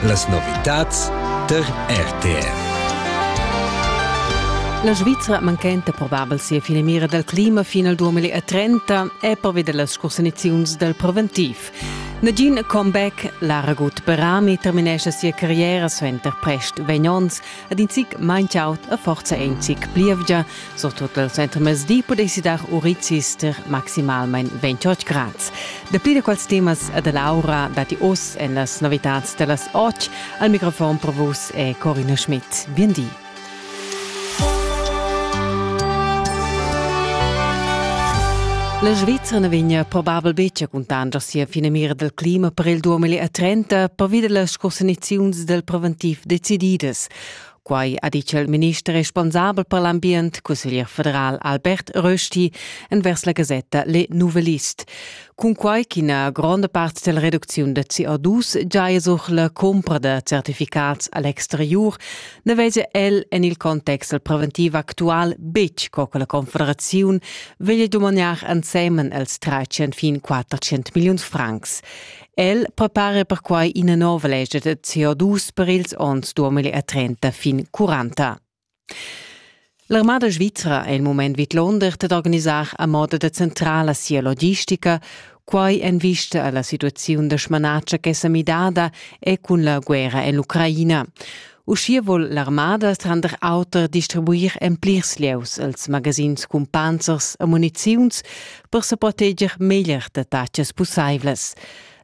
Las novitads tar RTR. La Svizra manchenta probabel sia finamira dal clima fin al 2030 è pervi da las cursaniziuns dal preventiv. Nagin comeback, Lara Gut Berami terminescha sia carriera suenter prest vegn onns Ed in zic maint aut e forza ein zic plievgia. Surtut el centrmezdi pudessi dar urizis ter maximalmein 28 grads. Dapli da quels temas e da Laura datti oz en las novitads da las 8. Al microfon per vus è Corina Schmidt. Bien di. La Svizzera na vegna probabel betg a cuntanscher sia finamira dal clima per il 2030 pervi da las cursaniziuns dal preventiv decididas. Quai ha ditg il minister responsabel per l'ambient, cusseglier federal Albert Rösti, envers la gasetta Le Nouvelliste. Cunquai ch'ina gronda part della reduziun da CO2 giaja sur la compra da certificats all'exterior, ne veglia el en il context preventiv actual betg co che la Confederaziun veglia dumagnar ensemen els 30400 million francs. El prepara perquai ina nova lescha da CO2 per ils onns 2030 fin 40. L'armada svizra è il moment vidlonder dad organisar a moda da centrala sia logistica, quai en vista a la situaziun da smanatscha ch'è sa midada e cun la guerra en l'Ucraina. Uschia vul l'armada tranter auter distribuir en plirs lieus als magazins cun panzers e muniziuns per sa proteger meglier da tacas pussaivlas.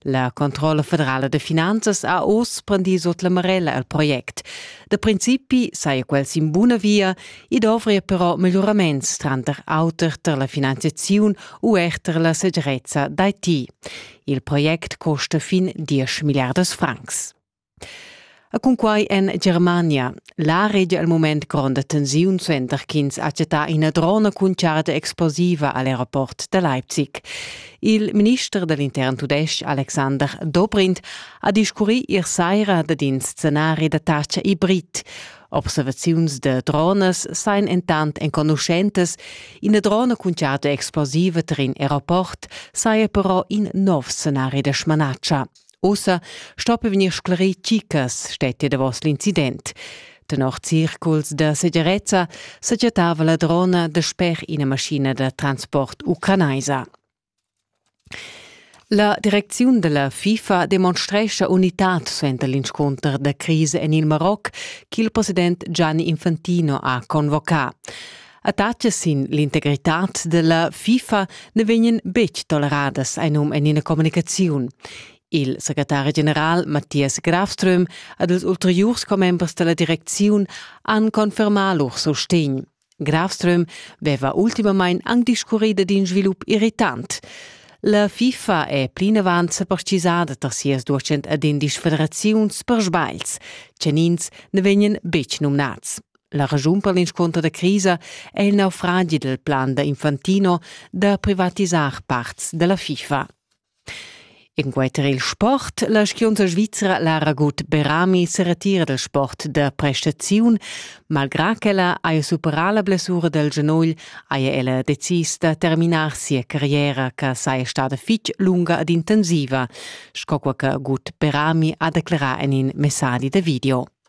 La Controlla federala de finanzas ha oz prendì sot la marella al project. Da principi saja quel sin buna via e dovria però melioraments tranter auter per la finanziaziun u er per la segirezza d'Haiti. Il project costa fin 10 milliardas francs. E cunquai en Germania. La regia al mument gronda tensiun suenter ch'ins ha chattà ina drona cun charda explosiva a l'aeroport da Leipzig. Il minister da l'intern tudestg Alexander Dobrindt ha discurrì ier saira dad in scenari da tatscha hibrid. Observaziuns da dronas sain entant enconuschentas. Ina drona cun charda explosiva tar in aeroport saja però in nov scenari da smanatscha, Ussa stoppi vegnir sclerì tgi cas stettia davos l'incident. Tenor circuls da segirezza segiattava la drona dasper ina maschina da transport ucranaisa. La direcziun della FIFA demonstrescha unitad suenter l'inscunter da crisa en il Maroc ch'il president Gianni Infantino ha convocà. Attacce sin l'integritad della FIFA ne vegnan betg toleradas ein um en ina communicaziun. Il secretari general Matthias Grafström ad els ulteriurs commembers della direcziun han confermà lur sostegn. Grafström veva ultimamain anc discurrida d'in svilup irritant. La FIFA è plinavant separtisada tar sias 210 federaziuns per sbails, tgenins ne vegnan betg numnads. La raschun per l'inscunter da crisa è il naufragi dal plan da Infantino da privatisar parts da la FIFA. Enquanter il sport, la skiunza svizra Lara Gut Berami se retira dal sport da prestaziun. Malgrà ch'ella haja superà la blessura dal genugl, haja ella decis da terminar sia carriera che saja stada fitg lunga ed intensiva, sco quai che Gut Berami ha declerà en in messadi da video.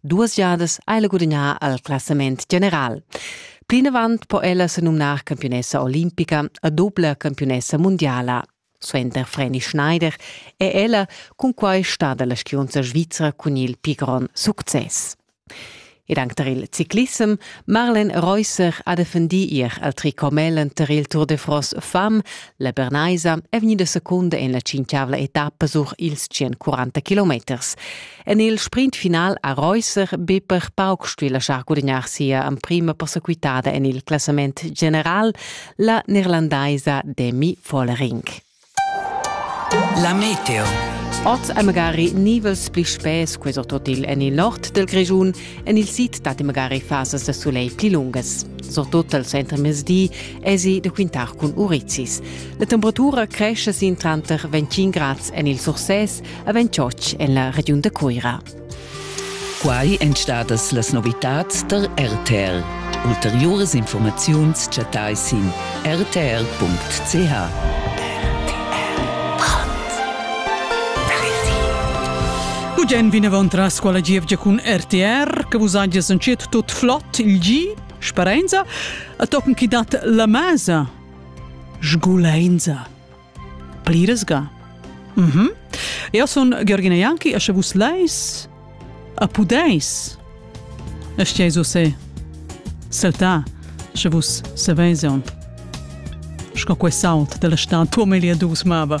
duas jadas ha ella gudagnà al classament general. Plinavant po ella se numnar campionessa olimpica a doppla campionessa mundiala. Suenter Freni Schneider è ella cunquai stada la skiunza svizra cun il pigron success. Ed anche tar il ciclissem, Marlen Reusser ha defendì ier al tricomellen tar il Tour de France fam. La Bernaisa è vegnida secunda en la cinquiavla etappa sur ils 140 kilometers. En il sprint final ha Reusser be per pauc stuì laschar gudignar sia emprima persequitada en il classament general, la neerlandaisa Demi Vollering. La meteo. Oz è magari nivels pli spess questo totil en il nord del Grischun. En il sid dat magari fasas da soleil pli lungas. Surtut al center mezdi esi da quintar cun urizis. La temperatura cresce sin tranter 25 grads en il Surses a Ventschotsch en la regiun da Cuira. Quai èn stadas las novitads tar RTL. Ulteriuras informaziuns chattai sin rtl.ch. Ugen vinavant tras quella gievgia cun RTR, che vus hagias entschet tot flott il gi, sperenza, a tochen chi dat la masa, sgulenza. Pliras ga. Mm -hmm. Eu sun Georgina Janki e sche vus leis a pudeis e steis se saltar sche vus saveis un sco quest salt della stan tuo melia dus mava.